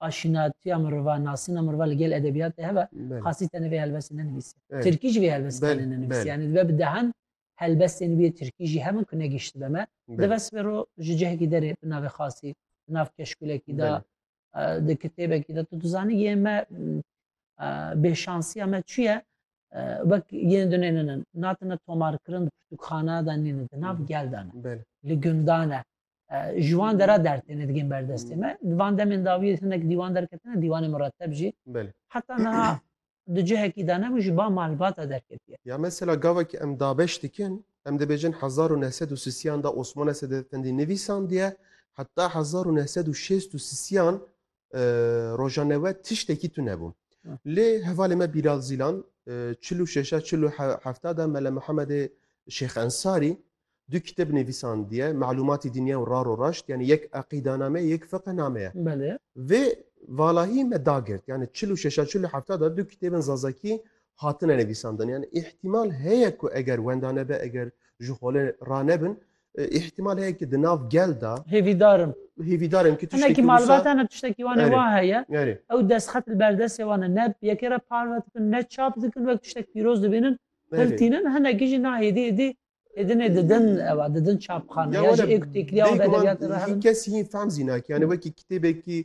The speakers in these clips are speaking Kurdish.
aşinatiya mirova nasina mirova li gel edebiyat de heve xasî tenê vê helbestê nenivîse Tirkî jî vê helbestê tenê nenivîse yani dibe bi dehan helbestên wê Tirkî jî hemin ku negişti be me dibe sibê ro ji cihekî derê bi navê xasî bi nav keşkulekî da di kitêbekî de tu dizanî yê me bêşansiya me çiye wek yên dunênin natine tomarkirin pirtûkxana da nînin di nav gel dane li gundane ji wan dera dertêne digên berdestê me di van demên dawiyê hinek dîwan derketine dîwanê mireteb jî heta niha di cihekî de nebû ji ba malbata derketiye ya mesela gavekî em dabeş dikin em dibêjin hezar û neh sed û sisiyan de osmone sedetendî nivîsandiye heta hezar û neh sed û şêst û sisiyan roja newe tiştekî tu nebû. Lê hevalê me Bîlal Zîlan çil û şeşa çil û hefta de Mele Mihemedê Şêx Ensarî du kitêb nivîsandiye Melûmatî Dinya û Rar û Raşt yanî yek eqîdaname ye yek fiqhname ye. Vê valahî me dagirt yanî çil û şeşa çil û hefta de du kitêbên zazakî hatine nivîsandin yanî îhtîmal heye ku eger wenda nebe eger ji xolê ranebin Îhtîmal heye ki di nav gel de Hêvîdar im. hêvîdar in ki Hinekî tiştekî wisa malbat hene tiştekî wan ê Erê. wan heye. Erê. Ew destxet li ber destê wan e. Ne yekê re parve dikin, ne çap dikin wek tiştek pîroz dibînin, Erê. hiltînin. Hinekî jî na hêdî hêdî hêdinê didin ew e, didin çapxane. Ya Ya jî wene ê ku têkiliya wan bi bêguman edebiyatê re hevin. kes yên fehm zî nake. Yani wekî kitêbekî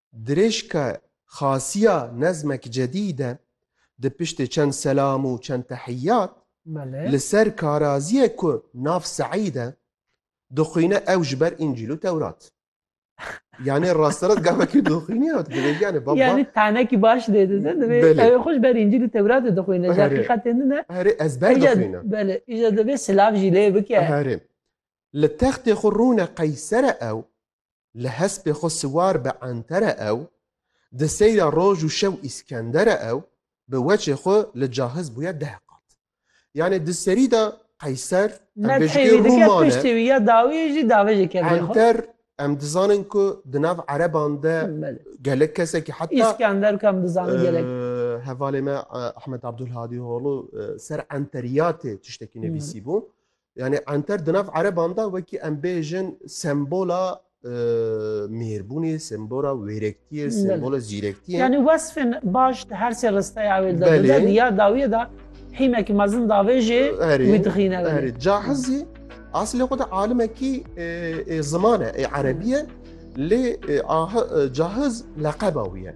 Dirêjka xasiya nezmek cedîd e. Di piştê çend selam û çend tehiyyat, li ser karaziyê ku nav Seîd e, dixwîne ew ji ber Încîl û Tewrat. Yanê rasterast gavekî dixwîne û dibêje yanê baba. Yanê tanekî baş dê dide, divê ew xwe ji ber Încîl û Tewratê dixwîne. Ji heqîqetê din e. Herê ezber dixwîne. Belê, îja divê silav jî lê bike. Herê. Li textê xwe rûne qeysere ew. li hespê xwe siwar bi entere ew, di seyra roj û şew Îskendere ew, bi weçê xwe li cahiz bûye deh qat. Yanê di serî de Qeyser, em bê ji kê Rûman e. Piştî wî ya dawî yê jî dave ji kevê xwe. Enter em dizanin ku di nav ereban de gelek kesekî heta Îskender ku em dizanin gelek. Hevalê me Ehmed Abdulhadî Holu ser enteriyatê tiştekî nivîsîbû. Yani anter di nav ereban de wekî em bêjin sembola e, mêrbûnê, sembola wêrektiyê, sembola zîrektiyê. Yani wesfên baş di her sê risteyê ew ê de Belê. dide diya dawiyê de hîmekî mezin davê jê Erê, wî dixîne belê. erê. Cahizî aslê xwe de alimekî e, e, zimane, e, erebiye lê e, ah- e, cahiz leqeba wî ye.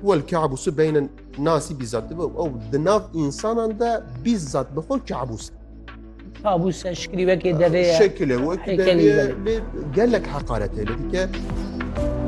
Wal kabusî beynin nasî bîzat dibe ew di nav însanan de bîzat bi xwe kabus. Kabus e şikilî wekê devê ye. Şekilê wekî devê ye lê gelek heqaretê li dike.